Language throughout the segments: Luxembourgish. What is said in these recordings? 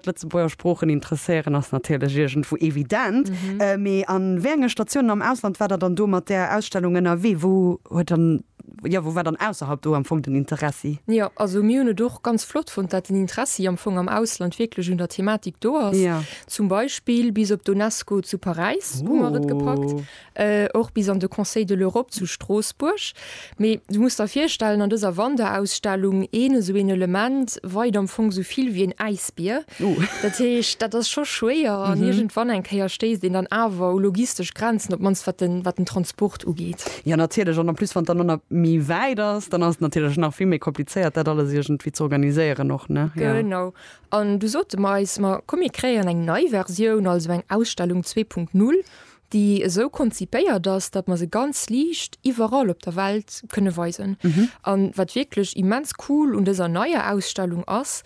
D'Lëtzebuerger Sproochen interesséieren ass natierlech iergendwou evident, mee an wéi enge Statiounen am Ausland waart der dann do mat där Ausstellung ënnerwee? Wou huet dann, jo, wou war dann ausserhalb do am Fong den Interessi? Jo, also mir hunn et och ganz flott fonnt, dat den Interessi am Fong am Ausland wierklech un der Thematik do ass. Zum Beispill bis op d'UNESCO zu Paräis hu mer et gepackt. och bis an de Conseil de l'Europe zu Stroossbuerg. Mee du muss der virstellen, an dëser Wanderausstellung een esou een Element weit am Fong esou vill wéi een Äisbier. Dat heescht, dat ass scho schwéier an iergendwann eng Kéier stéisst een dann awer u logistesch Grenzen, op d'mannst wat den, wat den Transport ugeet. Jo, natierlech. An en plus, wann et dann och nach méi wäit ass, dann ass et natierlech nach vill méi komplizéiert, dat alles iergendwéi ze organiséieren och, ne? Jo. Genau. An du sote mer eis, ma komm, mir kréien eng nei Versioun, also eng Ausstellung zwee Punkt Null. déi esou konzipéiert ass, datt mer se ganz liicht iwwerall op der Welt kënne weisen. An wat wierklech immens cool un dëser neier Ausstellung ass,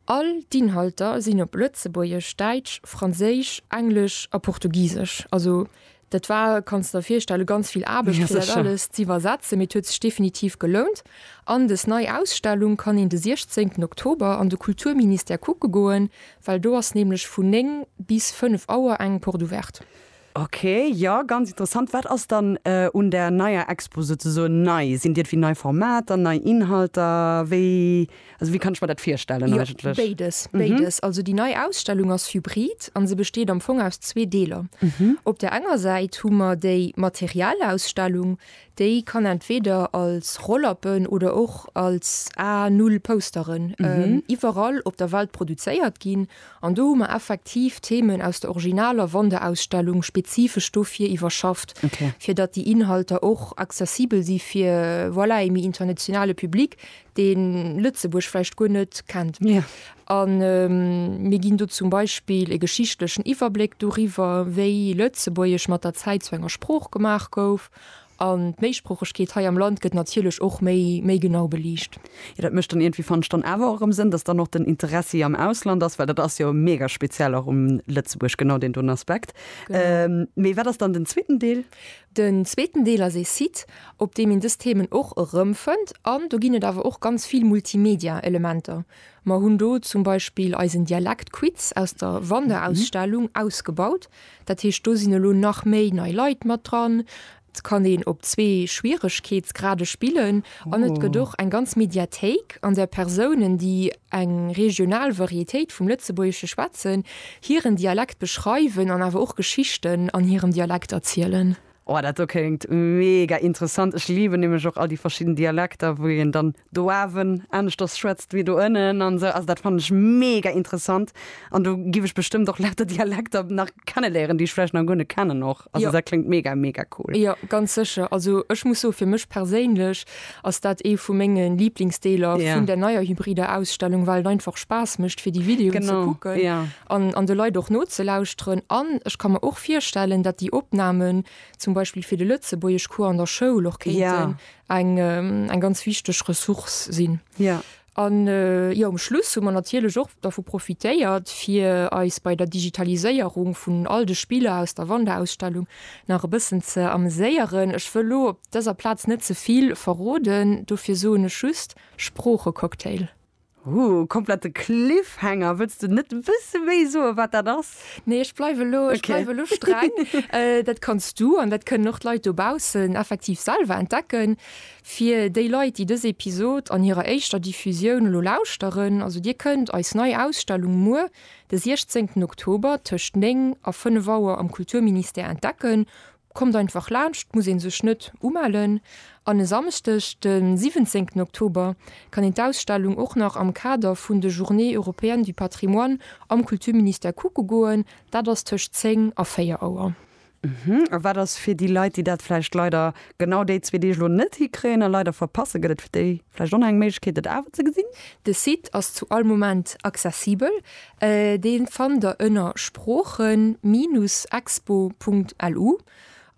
All d'Inhalter sinn op Lëtzebuergesch, Däitsch, Franséisch, Englesch a Portugisesch. Also dat war, kanns de der virstellen, ganz vill Aarbecht, fir dat alles z'iwwersetzen, mee et huet sech definitiv gelount. An des nei Ausstellung kann een de 16 Oktober an de Kulturministère kucke goen, Well do ass nämlech vun 9 bis 5 Auer eng Porte ouverte. Ok, jo, ganz interessant. Wat ass dann un der neier Expo souzesoen nei? Sinn d'iergwéi nei Formater, nei Inhalter? Wéi, also wéi kann ech mer dat virstellen eigentlech? Jo, béides, béides. Also déi nei Ausstellung ass hybrid a se besteet am Fong aus zwee Deeler. Op der enger Säit hu mer déi Materialausstellung, Déi kann entweder als Rolllappen oder och als A Null Pousteren iwwerall op der Welt produzéiert ginn. An do hu mer effektiv Themen aus der originaler Wanderausstellung spezifesch dofir iwwerschafft, fir datt déi Inhalter och accessibel si fir, voilà, ee méi internationale Public, dee Lëtzebuerg vläicht guer net kennt. A mir ginn do zum Beispill e geschichtlechen Iwwerbléck doriwwer, wéi Lëtzebuergesch mat der Zäit zu enger Sprooch gemaach gouf. An d'Méisproochegkeet hei am Land gëtt natierlech och méi méi genau beliicht. Jo, dat mécht dann iergendwéi, fannt ech, dann awer och erëm Sënn, dass dann och den Interessi am Ausland ass, well dat ass jo mega speziell och um Lëtzebuerg, genau deen doten Aspekt. Mee wat ass dann den zweeten Deel? Den zweeten Deel ass ee Site, op deem een dës Themen och erëmfënnt. An do ginn et awer och ganz vill Multimedia-Elementer. Mer hunn do zum Beispill eisen Dialektquiz aus der Wanderausstellung ausgebaut. Dat heescht, do sinn elo nach méi nei Leit mat dran. Et kann een op zwee Schwieregkeetsgrade spillen an et gëtt och eng ganz Mediathéik, an där Persounen, déi eng regional Varietéit vum Lëtzebuergesche schwätzen, hiren Dialekt beschreiwen an awer och Geschichten an hirem Dialekt erzielen. Oh dat do kléngt mega interessant. Ech liben nämlech och all déi verschidden Dialekter wou een dann do awen aneschters schwätzt wéi do ënnen an esou. Also dat fannen ech mega interessant an do giff ech bestëmmt och lauter Dialekter nach kenneléieren déi ech vläicht nach guer net kennen och. Also dat kléngt mega mega cool. Jo ganz sécher. Also ech muss soen fir mech perséinlech ass dat ee vu menge Liblingsdeeler vun der neier hybrider Ausstellung, well et einfach Spaass mécht fir déi Videoen ze kucken an an de Leit och nozelauschteren an ech ka mer och virstellen, datt déi Opnamen zum Beispill fir de Lëtzebuergeschcours an der Schoul och kéinten eng eng ganz wichteg Ressource sinn. An jo um Schluss hu mer natierlech och dervu profitéiert, fir eis bei der Digitaliséierung vun all de Spiller aus der Wanderausstellung nach e bëssen ze ameséieren. Ech wëll elo op dëser Plaz net ze vill verroden, dofir soen ech just, Sproochecocktail. Huu, komplette Cliffhanger, wëlls de net e bësse méi soen, wat dat ass? Nee, ech bleiwe elo, ech Okay. bleiwe elo streng. äh, dat kanns du, an dat kënnen och d'Leit dobaussen effektiv selwer entdecken. Fir déi Leit, déi dës Episod an hirer éischter Diffusioun elo lauschteren, also dir kënnt eis nei Ausstellung muer, de 16. Oktober, tëscht 9 a 5 Auer am Kulturministère entdecken, Kommt einfach laanscht, muss een sech net umellen. An e Samschdeg, de 17 Oktober, kann een d'Ausstellung och nach am Kader vun de Journées européennes du patrimoine am Kulturministère kucke goen. Dat ass tëscht 10 a 4 Auer. A wat ass fir déi Leit, déi dat vläicht leider genau déi zwee Deeg elo net hikréien a leider verpassen? Gëtt et fir déi vläicht och nach eng Méiglechkeet, dat awer ze gesinn? De Site ass zu all Moment accessibel. Dee fannt der ënner sproochen-expo.lu.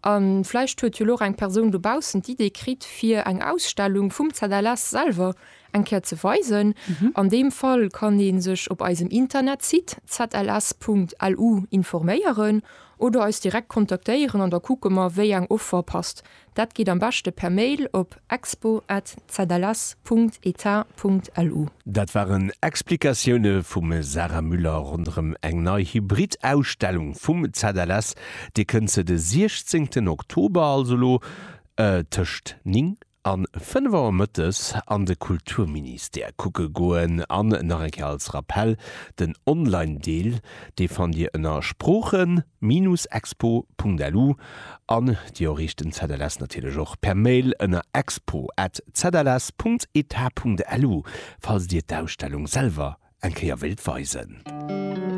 A vläicht huet jo elo eng Persoun dobaussen d'Idee kritt, fir eng Ausstellung vum ZLS selwer eng Kéier ze weisen. An deem Fall kann ee sech op eisem Internetsite zls.lu informéieren oder eis direkt kontaktéieren an da kucke mer, wéi eng Offer passt. Dat geet am beschte per Mail op expo@zls.eta.lu. Dat waren Explikatioune vum Sarah Müller ronderëm eng nei Hybrid-Ausstellung vum ZLS. Dir kënnt se de 16 Oktober, also elo, tëscht 9 a 5 Auer mëttes an de Kulturministère kucke goen. An nach eng Kéier als Rappell, den Online-Deel, dee fannt Dir ënner Sproochen. Minus-expo.lu an dir erreecht den ZLS natierlech och per Mail ënner expo at zls.eta.lu falls dir d'Ausstellung selwer eng Kéier wéilt weisen.